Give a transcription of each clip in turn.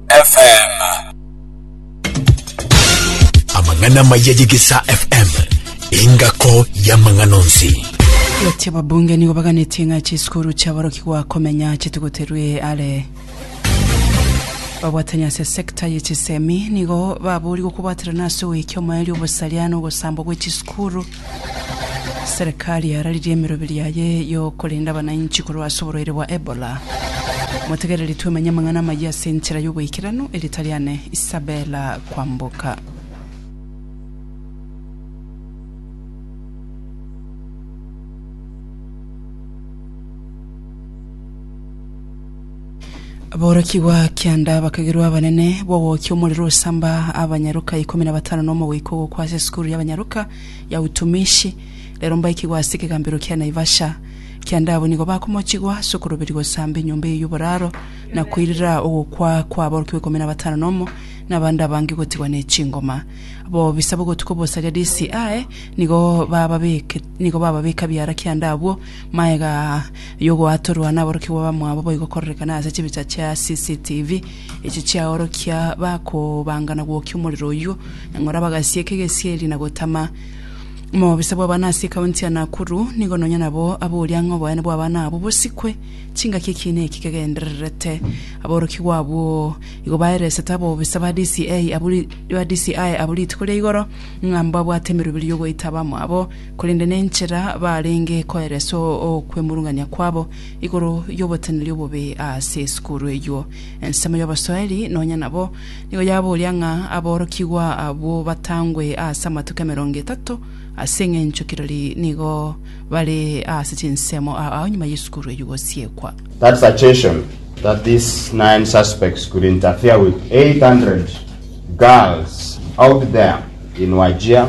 FM. Amang'ana amaya y'Egesaa FM, engako y'amang'ana onsi. Eti ababunge nigo baganetie ng'a chisukuru chiaborokigwa komenya chitigoterwe are babwatanya ase sekta ye chisemi nigo baboorigwe kobwaterana ase ogoika omoerio obosaria na ogosambwa gwe chisukuru Serikali yararirie emeroberi yaye y'okorenda abanainchi korwa ase oborwaire bwa Ebola. Motegereri twemenye amang'ana amayia ase enchera y'oboikeranu, erieta riane Isabella Kwamboka. Aborokigwa kianda bakagerwa abanene b'ogokia omorero osamba abanyaroka ikomi na batano n'omogoika ogokwa ase esukuru y'abanyaroka ya Utumishi. Rero mbaikigwa ase ekegambero kia Naivasha. Kianda abwo nigo bakomochigwa ase okoroberia gosamba enyomba eye y'oboraro na koirera ogokwa kwa aborokigwa ikomi na batano nomo na abande abange gotigwa ne chingoma. Abobisa b'ogotuko bosaria DCI nigo bababeke nigo bababeka biara kianda abwo maega Y'ogoatorwa naborokigwa bamwabo boigo kororekana ase chibicha chia CCTV echio chiaorokia bakobanga na gwokia omorero oyio nang'ora bagasieka egesieri na gotama. Omobisa bw'abana ase ekaunti ya Nakuru nigo nonya nabo aboria ng'a oboene bw'abana abwo bosikwe chingaki ekiina eki kegendererete. Aborokigwa abwo igo baeresete abobisa ba DCI abwo rituko ria igoro ng'a mbabwate emerubirio y'ogoita abamwabo korende nenchera barenge koereswa okwemurungania kwabo igoro y'oboteneneri obobe ase esukuru eyio. Ensemo y'Abaswahili nonya nabo nigo yaboria ng'a aborokigwa abwo batangwe ase amatuko emerongo etato ase engencho kirori nigo bare ase chinsemo aao nyuma y'esukuru eyio gosiekwa. That suggestion that these nine suspects could interfere with 800 girls out there in Wajir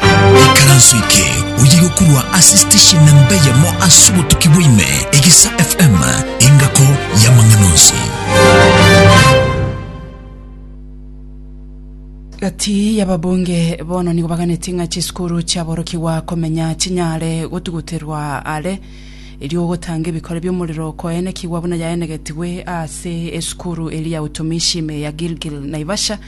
Ekaranso eke oye gokurwa ase station na mbeyemo ase obotuki bwaime Egesa FM engako y'amang'ana onsi. Gati y'ababunge bono nigo baganeti ng'a chisukuru chiaborokigwa komenya chinyare gotuguterwa are erio ogotanga ebikore bi'omorero koenekigwa buna yaenegetigwe ase esukuru eria ya utumishi ime ya Gilgil Naivasha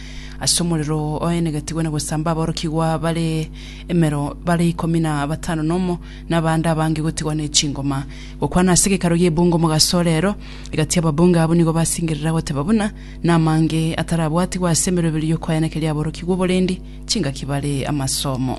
Ase omorero oenegetigwe na gosamba aborokigwa bare emero bare ikomi na batano nomo, na abande abange gotigwa ne chingoma. Gokwana ase gekaro gi'ebungo omogaso ore ero, egati ababunge abwo nigo basingerera goteba buna namange atarabwatigwe ase emeroberio y'okoenekeria aborokigwa oborendi chingaki bare amasomo.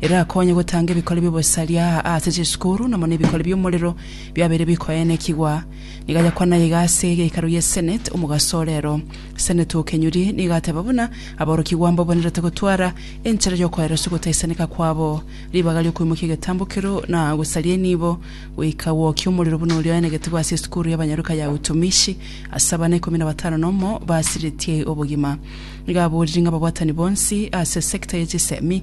erakonye gotanga ebikori bi'obosaria ase chisukuru, na mono ebikori bi'omorero biabeire bikoenekigwa. Nigo agakwa naye iga ase egekaru ye Senate omogaso ore ero. Senate o Kenyuri nigo ateba buna aborokigwa mbabonerete gotwara enchera y'okoereswa ogotaisaneka kwabo, ribaga ri'okoimokia egetambo kero, na gosaria enibo, goika gwokia omorero buna oria oenegetigwe ase esukuru y'abanyaruka ya Utumishi ase abana ikomi na batano nomo basiretie obogima. Nigo aborire ng'a ababwatani bonsi ase sector ye chisemi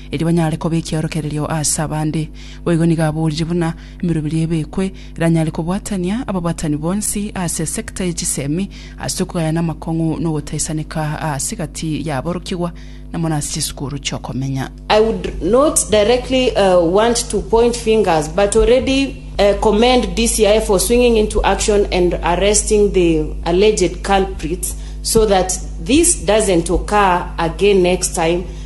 erio banyare koba ekiorokererio ase abande. Boigo nigo aboorire buna emeroberio ebekwe eranyare kobwatania ababwatani bonsi ase esecta ye chisemi ase okogayana amakong'u na ogotaisaneka aase egati y'aborokigwa na mono ase chisukuru chi'okomenya. I would not directly want to point fingers but already commend DCI for swinging into action and arresting the alleged culprits so that this doesn't occur again next time.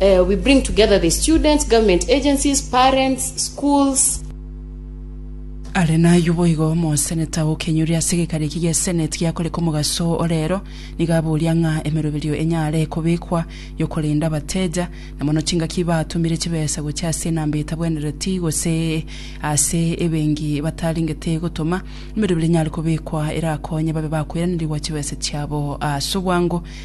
We bring together the students, government agencies, parents, schools. Are nayio boigo omoseneta o Kenyuri ase egekanio eki gie Senate giakoreka omogaso o rero nigo aboria ng'a emeroberio enyare kobekwa yokorenda abateja na mono chingaki batumire chibesa gochia ase enamba etabwenereti gose ase ebenki batarengete gotoma emeroberio enyare kobekwa erakonye babe bakoiraneregwa chibesa chiabo ase obwango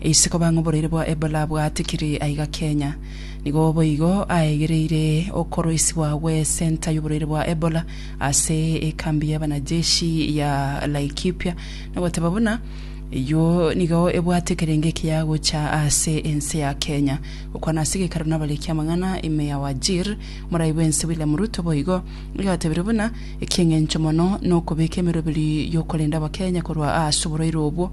Ise koba ng'a oboreire bwa Ebola bwatikire aiga Kenya, nigo boigo aegereire okoroisigwa gwe center y'oboreire bwa Ebola ase ekambi y'abanajeshi ya Laikipia na goteba buna eyio nigo ebwate kerenge ekiya gocha ase ense ya Kenya. Gokwana ase gekarano abariki amang'ana ime ya Wajir, morai bwense William Ruto boigo agatebire buna eki'engencho mono nokobeka emeroberi y'okorenda abakenya korwa ase oboreire obwo,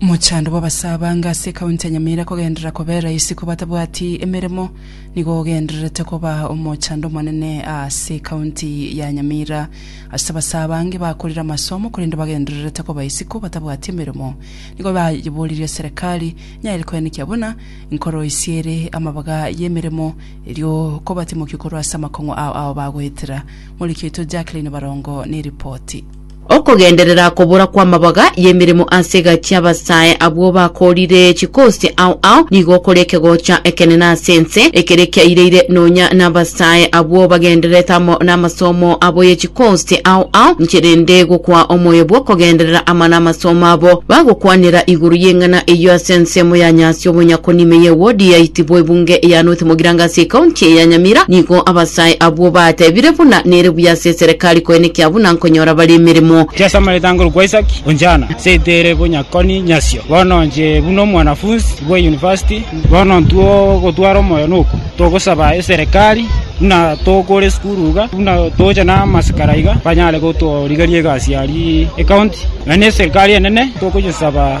Mochando bw'abasaabanga ase ekaunti ya Nyamira kogenderera kobera isiko batabwati emeremo nigo ogendererete koba omochando omonene ase ekaunti ya Nyamira ase abasaabange bakorire amasomo korende bagendererete koba isiko batabwati emeremo nigo bayeboririe serekari nyaire koenekia buna nkoro isiere amabaga y'emeremo erio kobatimokia korwa ase amakong'u ao ao bagoetera. Moriki oito Jacqueline Barongo neripoti. Okogenderera kobora kw'amabaga y'emeremo ase egati y'abasae abwo bakoorire chikosi ao ao, nigo okore ekegocha ekenene ase ense, ekere kiaireire nonya n'abasae abwo bagendererete amo namasomo abo ye chikosi ao ao, inche rende gokwa omoyo bw'okogenderera amana amasomo abo. Bagokwanera igoro y'eng'ana eyio ase ensemo ya nyasi obonyakoni ime ye wodi ya itibo ebunge ya North Mogiranga ase ekaunti ya Nyamira. Nigo abasae abwo batebire buna nere buya ase eserekari koenekia buna konyora bare emeremo. Yeso amaete ango rokwa Isaki, Onchana, ase etere konya koni nyasio. Bono nche buna omwanafunsi bwe university, bono ntwo gotwara omoyo noku, togosaba eserekari buna tokore esukuru iga, buna toche namasikara iga, banyare gotorigeria egasi aria ecounty, na neserekari enene tokonyesaba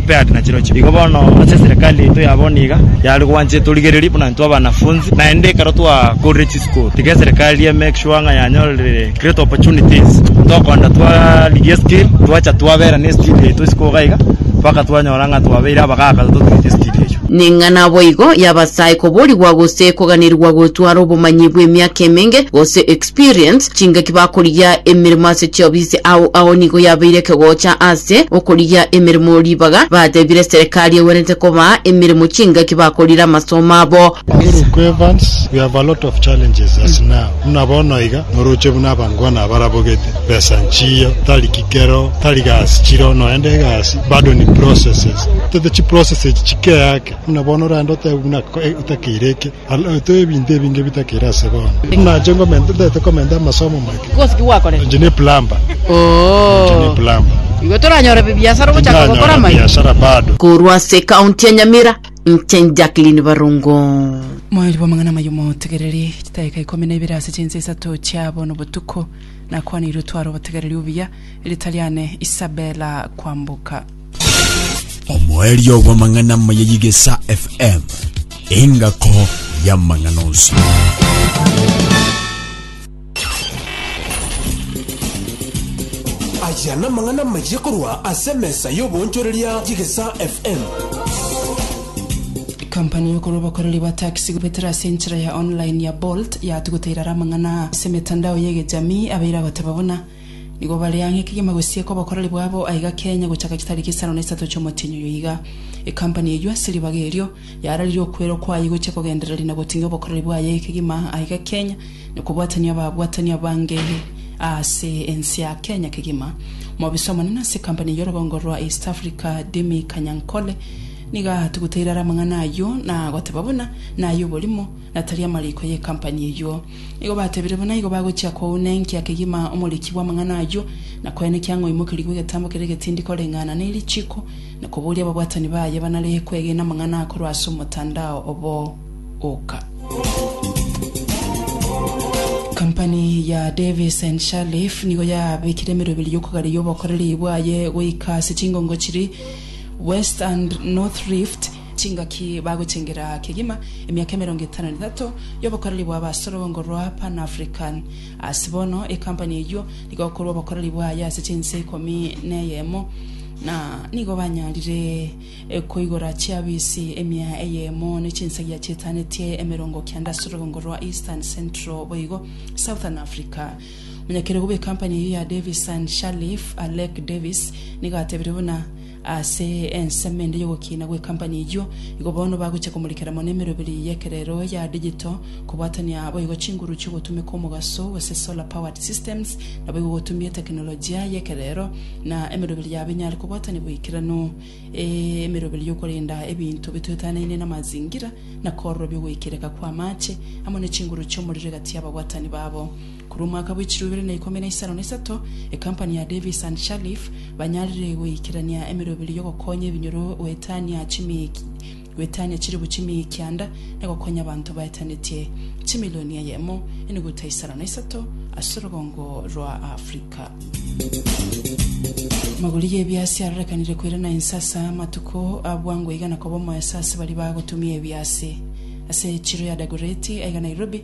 Igo bono ase eserekari yaito ya bono iga yare gwancha torigererie buna intwe abanafunzi, naende ekero twakorire chisukuru tiga eserekari e make sure ng'a yanyorire great opportunities tokoenda twarigia skill twacha twabera ne skill yaito isiko iga iga mpaka twanyora ng'a twabeire abagaka totuete skill eyio. Ning'a naboigo y'Abasai koborigwa gose koganirigwa gotwara obomanyi bw'emiaka emenge gose experience. experience chingaki bakorigia emeremo ase chiofisi ao ao nigo yabeire ekegocha ase okorigia emeremo ribaga batebire serikari egwenerete kobaa emeremo chingaki bakorire amasomo abo. Oruko Evans, We have a lot of challenges as now, buna bono iga noroche buna abangwana abarabogete, besa nchiyo, tari kikero, tari gasi chiro, noende egasi bado ni processes, tote chiprocess echi chikeake buna bono orende otebe buna otakeire eke, Alaete ebinto ebinge bitakire ase bono. Nache ngomenta, ntaete komenta amasomo amake. Kosi ki gwakorete? Inche ne plumber. Inche ne Oh. plumber. Igo toranyore bibiasara ogochaka gokora Tindanyora amaiga. biashara bado. Korwa ase County ya Nyamira, inche Jacqueline Barongo. Moerio bw'amang'ana amaya omotegereri, chidaeka ikomi na ibere ase chinsa isato chia bono botuko, nakwaneire otware obotegereri obuya, erita riane Isabella Kwamboka. omoerio bw'amang'ana amaya y'Igesa FM, engako y'amang'ana onsi. Aya namang'ana amaya korwa ase emesa y'oboonchoreria y'Igesa FM. Kampani y'okorwa obokoreri bwa taxi gobetera ase enchera ya online ya Bolt yatuguteire are amang'ana aa ase emetandao y'egechami abeire agoteba buna Nigo bare ang'e kegima gosieka obokoreri bwabo aiga Kenya gochaka chitariki isano na isato chi'omotienyi oyo iga. Ecompany eyio ase ribaga erio yararirie okwera okwaye gochia kogendereria na goting'ia obokoreri bwaye kegima aiga Kenya na kobwatania ababwatani abange aase ense ya Kenya kegima. Omobisa omonene ase ecompany y'orogongo rwa East Africa Dimmy Kanyankole nigo atuguteire are amang'ana ayio na goteba buna naye oborimo na tari amariko y'ecompany eyio. Nigo batebire buna igo bagochia kouna enkia kegima omoriki bw'amang'ana ayio, na koenekia ng'a oimokerigwe egetambo keria egetindi koreng'ana ne richiiko, na kobooria ababwatani baye banare kwegena amang'ana akorwa ase omotandao obo oka. Kampani ya Davis and Sharleaf nigo yabekire emerwa ebere y'okogareria obokoreri bwaye goika ase chingongo chiri West and North Rift, Chingaki bagochengera kegima emiaka emerongo etano na etato y'obokoreri bwa abasorog'ongo rwa Pan African. Ase bono ekampani eyio nigo ekorwa obokoreri bwaye ase chinse ikomi neyemo, na nigo banyarire koigora chiafisi emia eyemo ne chinsagia chietanetie emerongo kenda ase orog'ongo rwa Eastern, Central boigo Southern Africa. Omonyakerogo bw'ekampani eyio ya Davis and Sharleaf, Alec Davis, nigo atebire buna, Ase ensemo ende y'ogokiina gw'ekampani eyio, igo bono bagochia komorikera mono emeroberi y'ekerero ya digital, kobwatania boigo chinguru chi'ogotumeka omogaso gose solar-powered systems, naboigo gotumia etekenolojia y'ekerero na emeroberi yabo enyare kobwatania boikeranu, emeroberi y'okorenda ebinto bitoetanaine namazingira, na kororobia ogoikereka kw'amaache amo ne chinguru chi'omorero egati y'ababwatani babo. Korwa omwaka bwe chirobere na ikomi na isano na isato, ekampani ya Davis and Shalliff banyarire goikerania emeroberi y'ogokonya ebinyoro goetania goetania chiribu chimie kianda na gokonya abanto baetanetie chimilioni eyemo enuguta isano na isato ase orogongo rwa Africa. Amagori y'ebiasi arorekanire koirana inse ase amatuko a bwango iga na koba omoeso ase baria bagotumia ebiasi. Ase echiro ya Dagoretti aiga Nairobi,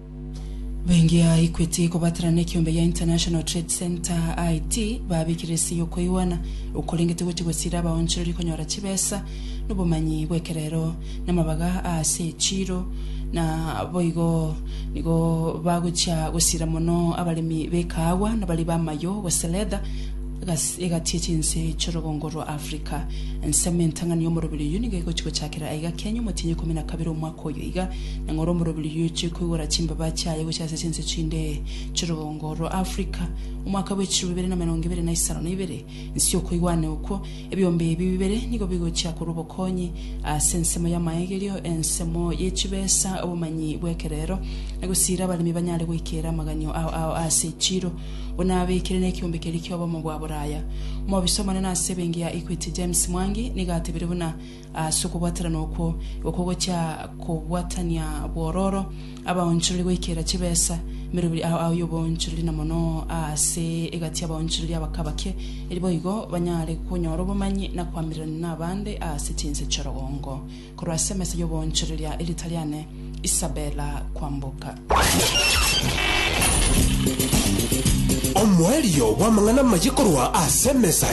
Bengi a Equity kobaterana na ekeombe gia International Trade Centre, IT, babekire ase yokoigwana okorengete gochia gosiira abaonchoreri konyora chibesa nobomanyi bw'ekerero namabaga aase echiro na boigo nigo bagochia gosiira mono abaremi b'ekaagwa nabari b'amayo gose leather gase egati echinse chi'orogongo rwa Africa. Ensemo entang'ani y'omoroberi oyio nigo egochia gochakera aiga Kenya omotienyi ikomi na kabere omwaka oyo iga. Neng'ora omorobiri ochie koigora chimbaba chiaye gochia ase chinse chinde chi'orogongo rwa Afrika. Omwaka bwe chirobo ibere na emerongo ebere na isano na ibere, inse y'okoigwana okwo, ebiombe ebi bibere nigo bigochia korwa obokonyi ase ensemo y'amaegerio, ensemo ye chibesa, obomanyi bw'ekerero, na gosiira abaremi banyare goikera amaganio ao ao ase echiiro, buna abeekire nekiombe keria ki'obomo bwa boraya. Omobisa omonene ase ebenki ya Equity James Mwangi nigo atebire buna Ase okobwaterana okwo, oko gochia kobwatania bwororo, abaonchorori goikera chibesa merobiri ao ao y'oboonchorori, na mono aase egati y'abaonchorori abake abake, eri boigo banyare konyora obomanyi na koamererania nabande aase chinse chi'orogongo. Korwa ase emesa y'oboonchorori ya Eritariane, Isabella Kwamboka. Omoerio bw'amang'ana amaye korwa ase emesa